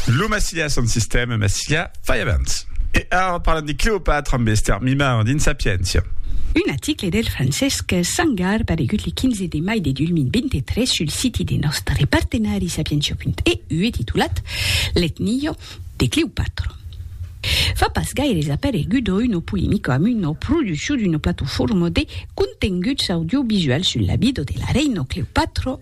Lo Massilia son sistèma Massilia fai abans. E ara parlam de Cleopatra amb Esther Mimard dins Sapientia. Un aticle del Francesc Sangar paregut le 15 de mai de 2023 sul siti de nòstre partenari sapientia.eu e titulat L'etnio de Cleopatra fa pas gaire es aparegut a uno polemico amb una produccion d'una plataforma de contenguts audiovisuals sul labido de la reina Cleopatra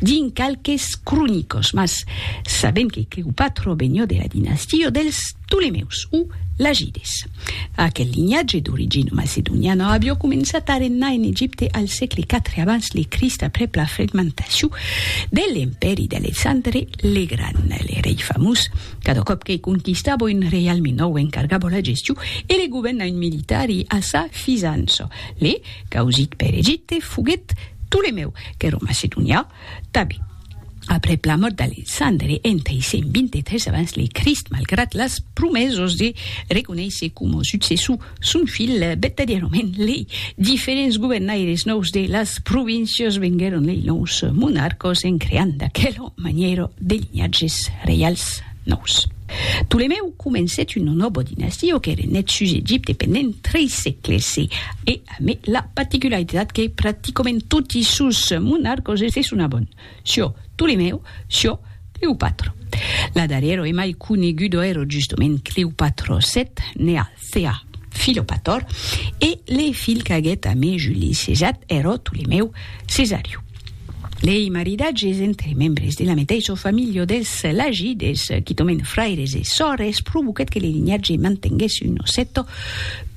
dins qualques cronicos, mas sabèm que Cleopatra vegnió de la dinastia dels Ptolemèus o Lagides. Aquel linhatge d'origina macedoniana avió començat a regnar en Egipte al sègle iv abans le Crist aprèp la fragmentacion de l'empèri d'Alexandre le Gran, le rei famós, cada còp que conquistava un reialme nòu encargava la gestion e le govèrn a un militari a sa fisança, le Causit per Egipte foguèt Ptolemèu qu'èra macedonià, Tabe. Aprèp la mòrt d'Alexandre en 323 abans le Crist, malgrat las promesas de reconéisser coma successor son filh, vertadièrament lei diferents governaires nòus de las províncias venguèron lei nòus monarcas en creant d'aquela manièra de linhatges reials nòus. Ptolemèu comencèt un nòbo dinastiu que renèt sus Egipte pendent trei sègles e e amé la particularitat que practicomènt toti sos monarcos se sonabon Sio, Ptolemèu, Sio, Cleopatro. La darrèro e mai conegudo èro justomènt Cleopatro vii, nèa Sea, Filopator, e le filh qu'aguet a me Juli sejat ero Tolemèu Cesariu. Lei maridatges entre membres de la meteisho familho des Lagides, quitomen fraires e sòrres, provoquet que le linhatge mantenguesse uno cèto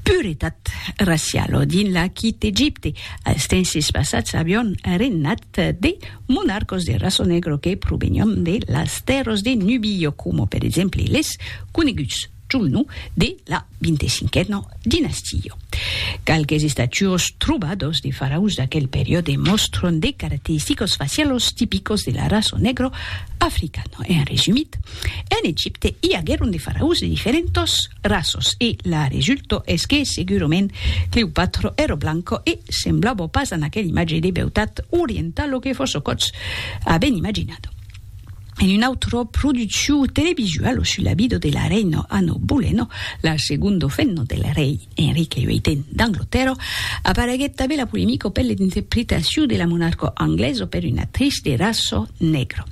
puretat racialo dins l'Aquit Egipte, als tenses passats avion regnat de monarcos de raço negro que provenion de las tèrros de Nubio, coma per exemple les coneguts. Junho de la vinte-cinquena dinastia. Qualques estatuas trobadas de faraus d'aquel periòde mòstran de caracteristicas facialas tipicas de la raça negra africana. En resumit, en Egipte i aguèron de faraus de diferentas raças e la resulta es que segurament Cleopatra èra blanca e semblava pas a aquela imatge de beutat orientala que fòrça còps avèn imaginada. en un autro produciu televisual sus la vida de la reina Anno Boleno, la segondo femna del rei Enrique VIII d'Anglotèrra, apareguèt tanben la polemica per l'interpretaciu de la monarca anglesa per una actrice de raça negra.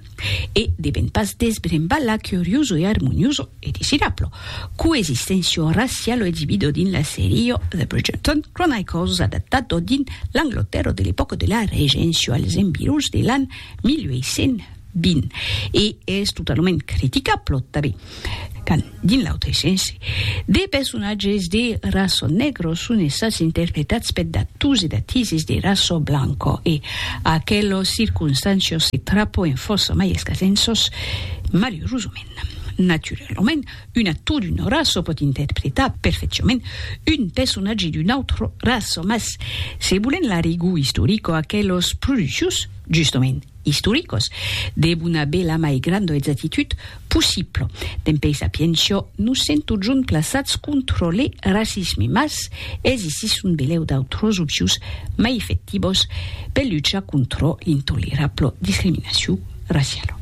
E devèn pas desbrembar la curiosa e armoniosa, e desirabla, coexisténcia raciala exibida dins la seria The Bridgerton Chronicles adaptada dins l'Anglotèrra de l'epòca de la Regéncia als environs de l'an 1820 e es totalament criticable tanben quand, dins l'autre sens, de personatges de raçò negro son estats interpretats per d'ators e d'atises de raçò blanco e aquelos circonstancios se trapoen fòrça mai escasens sos, malurosament. Naturalament, Un actor d'una raça pòt interpretar perfecciament un personatge d'una autra raça, mas se volèm la rigor istorica, aqueles produccions, justament, istoricas, devon aver la mai granda exactitud possibla. Dempèi sapiéncia, nos sèm totjorn plaçats contra le racisme, mas existisson belèu d'autras opcions mai efectivas per luchar contra l'intolerabla discriminacion. Raffiello.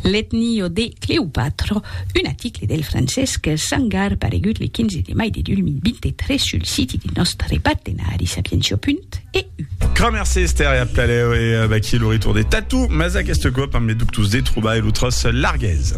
L'Etnio de Cleopatra, un aticle del Francesc Sangar paregut le 15 de mai de 2023 sul siti de nòstre partenari sapientia.eu. Cramèrs Ester e a Plalèu e vaquí lo retorn de Tatou, mas aqueste còp amb le dubtós de trobar e lo tròç largués.